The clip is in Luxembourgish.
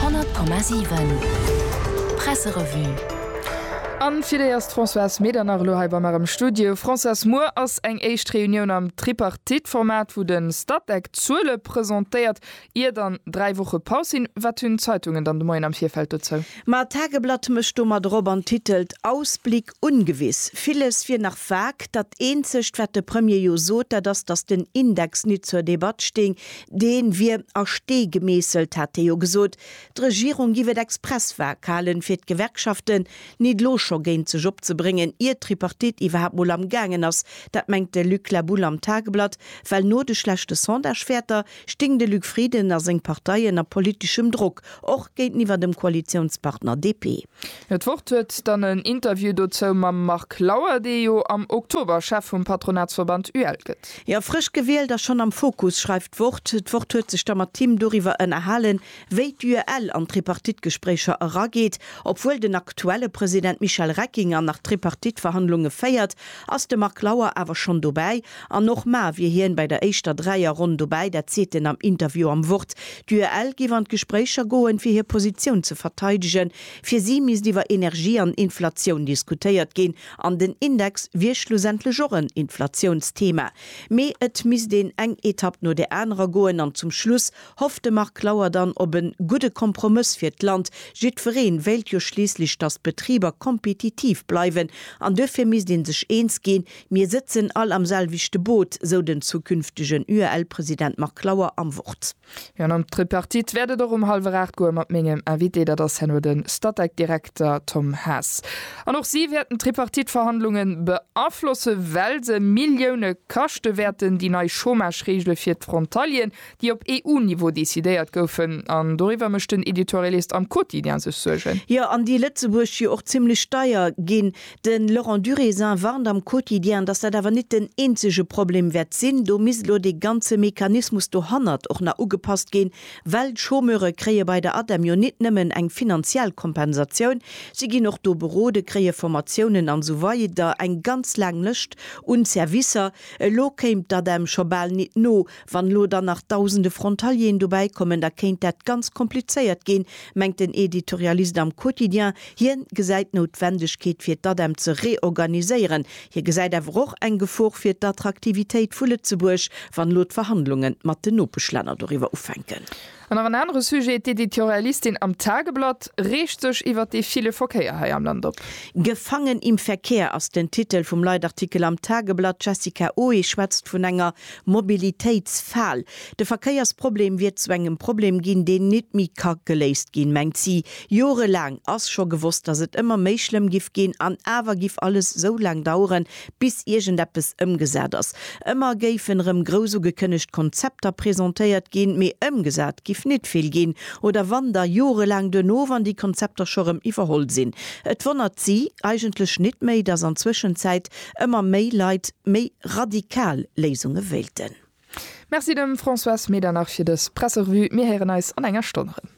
100,7 Presserevue An fir déi ass d'Françoise Medernach elo hei bei mer am Studio. Françoise, muer ass eng éischt Reunioun am Tripartite-Format, wou de Statec d'Zuele presentéiert, ier dann dräi Woche Paus sinn. Wat hunn d'Zeitungen dann de Moien am Virfeld dozou? Ma d'Tageblatt mécht domat erop an titelt, Ausblick ungewiss. Villes wier nach vag. Dat eenzegt, wat de Premier jo sot, dat ass, datt den Index nit zur Debatt sting, Deen wier a Stee gemeesselt, hat hie jo gesot. D'Regierung giff et express vag halen, fir d'Gewerkschaften nit elo scho géint sech opzebréngen, ier d'Tripartite iwwerhaapt mol am gaangen ass. Dat mengt de Luc La Boule am Tageblatt, well no de schlechte Sondagewäerter sting de Luc Frieden a seng Partei ënner politeschem Drock, och géinteniwwer dem Koalitiounspartner DP. D'Wort huet dann en Interview dozou mam Marc Lauer, dee jo am Oktober Chef vum Patronatsverband UEL gëtt. Jo, frësch gewielt a schonn am Fokus, schreift d'Wort. D'Wort huet sech da mat him doriwwer ënnerhalen, wéi d'UEL an d'Tripartite-Gespréicher erageet. Obwuel den aktuelle President Michel Reckinger nach d'Tripartite-Verhandlunge féiert, ass de Marc Lauer awer schonn dobäi An och mar wier hien bei der éischter Dräierronn dobäi, dat seet en am Interview am Wort. D'UEL géif an d'Gespréicher goen, fir hir Positioun ze verteidegen. Fir si misst iwwer Energie an Inflatioun diskutéiert ginn, an den Index wier schlussendlech och en Inflatiounsthema. Mee et misst een eng Etapp no der anerer goen an zum Schluss hofft de Marc Lauer dann op e gudde Kompromëss fir d'Land. Jiddweree wéilt jo schliisslech, datt d'Betriber kompetitiv bleiwen an duerfir misst ee sech eens ginn, Mir sëtzen all am selwechte Boot, sou den zukünftegen UEL-President Marc Lauer am Wort. Jo, an an d'Tripartite wäert et och um hallwer 8 goe mat mengem Invité, dat ass herno de Statec-Direkter Tom Haas. An och si wäerten d'Tripartite-Verhandlunge beaflosse well se Millioune kaschte wäerten, déi nei Chômage-Reegele fir d'Frontalieren, déi op EU-Niveau decidéiert goufen. An doriwwer mécht den Editorialist am Quotidien sech Suergen. Jo, an déi Lëtzebuerg jo och zimlech deier ginn. De Laurent Duriezin warnt am Quotidien, datt dat awer nit den eenzege Problem wäert sinn. Do misst elo dee ganze Mechanismus dohannert och nach ugepasst ginn, well d'Chômeure kréie bei der ADEM jo nit nëmmen eng finanziell Kompensatioun, si ginn och do berode, kréie Formatiounen an esou weider, eng ganz laang Lëscht un Servicer. Elo kéim d'ADEM scho bal nit no, Wann elo dann nach dausende Frontalieren dobäi kommen, da kéint dat ganz komplizéiert ginn, mengt den Editorialist am Quotidien. Hien gesäit d'Noutwendegkeet fir d'ADEM ze reorganiséieren. Hie gesäit awer och eng Gefor fir d'Attraktivitéit vu Lëtzebuerg, wann elo d'Verhandlungen mat den Nopeschlänner doriwwer ufänken. An nach en anere Sujet, D'Editorialistin am Tageblatt reegt sech iwwer dee ville Verkéier hei am Land op. Gefangen im Verkehr ass den Titel vum Leitartikel am Tageblatt. D'Jessica Oe schwätzt vun enger Mobilitéitsfal. De Verkéiersproblem wier zu engem Problem ginn, deen nit méi ka geléist ginn, mengt si. Jorelaang ass scho gewosst, datt et ëmmer méi schlëmm giff ginn, an awer giff alles esou laang daueren, bis iergendeppes ëmgesat ass. Ëmmer géifen erëm grouss ugekënnegt Konzepter presentéiert ginn, mee ëmgesat giff nit vill ginn, oder wann, da jorelaang duerno, wann déi Konzepter scho erëm iwwerholl sinn. Et wonnert si eigentlech nit méi, dass an Zwëschenzäit ëmmer méi Leit méi radikal Léisunge wéilten. Merci dem Françoise Medernach fir dës Presserevue. Mir héieren eis an enger Stonn erëm.